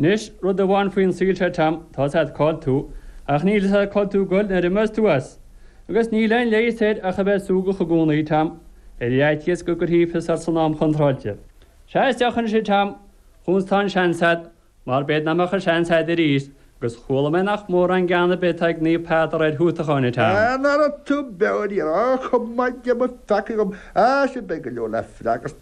Anois, rud amháin faoin saol seo Tom, tá a fhios agat cá bhfuil tú ach níl a fhios agat cá bhfuil tú ag goil nuair a imeos tú as. Agus níl aon leigheas air ach a bheith súgach i gcónaí Tom, ar fhaitíos go gcuirfí fios ort san am contráilte. Seas isteach ansin Tom, chúns tá an seans agat, mar b'fhéidir nach mbeadh an seans agat arís, agus chuala mé nach mórán gean ar bith atá ag Naomh Peadar ar thútacháin a Tom. An raibh tú beoir? Níor fhág go maithe Dia mo pheacaí dhom. Sea sin beidh go leor le freagairt.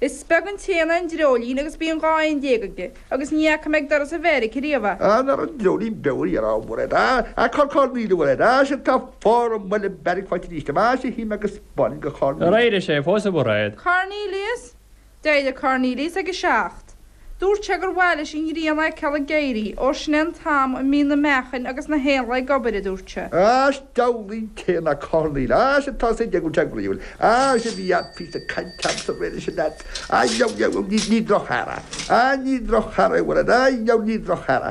Is beag an t-éan é an dreoilín agus bíonn dhá éan déag aige agus ní fhaca mé ag doras an bheairic ariamh é. An ar an dreoilín beo a dhéanamh an bhfuil air a, a corcán lín an bhfuil air a, sin tá fána an bhfuil an beairic faighte arís amach a shuím agus buailfinn go Cornelius. Ar éirigh sé fós a Mhairéad? Cornelius? D'éirigh Cornelius ag a seacht. Dúirt sé gur mhaith leis an ghrian a fheiceáil ag éirí, ó sin é an t-am a mbíonn na meachain agus na héanlaith ag obair, a dúirt sé. Áis d'fhoghlaim céanna Cornaíl, áis atá sa deigiú déag bliain, áis a bhí ann fís ag caint ann sa bhliain is anall. Á, ní droch-chara. Á, ní droch-chara é bhfuil ann. Á, ní droch-chara.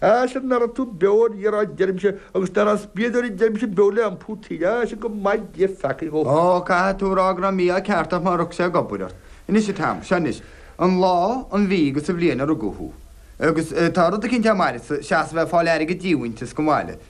Ais ná raibh tú beo ar iarráid deirimse agus dar as bíogadh deirimse beo le iompú taoide ais go maithe Dia mo pheacaí dhom. Ó, caithfidh tú a rá go raibh mí-ádh ceart ort má rug sé ag obair ort. Anois a Tom, seo anois an lá, an mhí agus an bhliain a rugadh thú. Agus tá rud eicínt a mairfeadsa, seasamh ag fáil airgead díomhaointis go maith leat.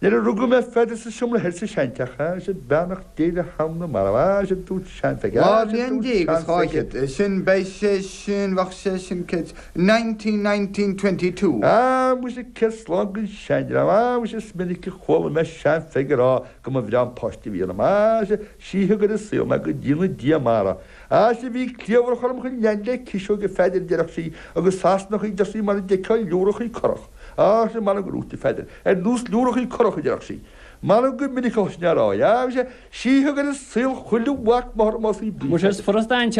Nuair a rugadh mé a Pheadair sa seomra thoir sa seanteach, beannacht Dé le hanam na marbh, dúirt Sean-Pheige, dhá bhliain déag is dhá fhichead ó shin, beidh sé sin, bheadh sé sin, nineteen, nineteen, twenty two. A, muise, céad slán gon seandream, a, muise, is minic a chuala mé Sean-Pheige ag rá go mba bhreá an páiste a bhí ionam, a, a, sin, sí a thug ar an saol mé go ndéana Dia maith uirthi, a, a, sin, bhí cliabhrach orm chomh leathan le ciseog a Pheadair deireadh sí agus easnachaí deir sí mar a d'fheicfeá liúrachaí curach, a, a, sin, mar an gcrúite Pheadair. ar nós liúrachaí curach, a deireadh sí. M'anam go minic os nar éirigh, agus, sí a thug ar an saol chuile mhac máthar más í bliain. Muise, is furasta an.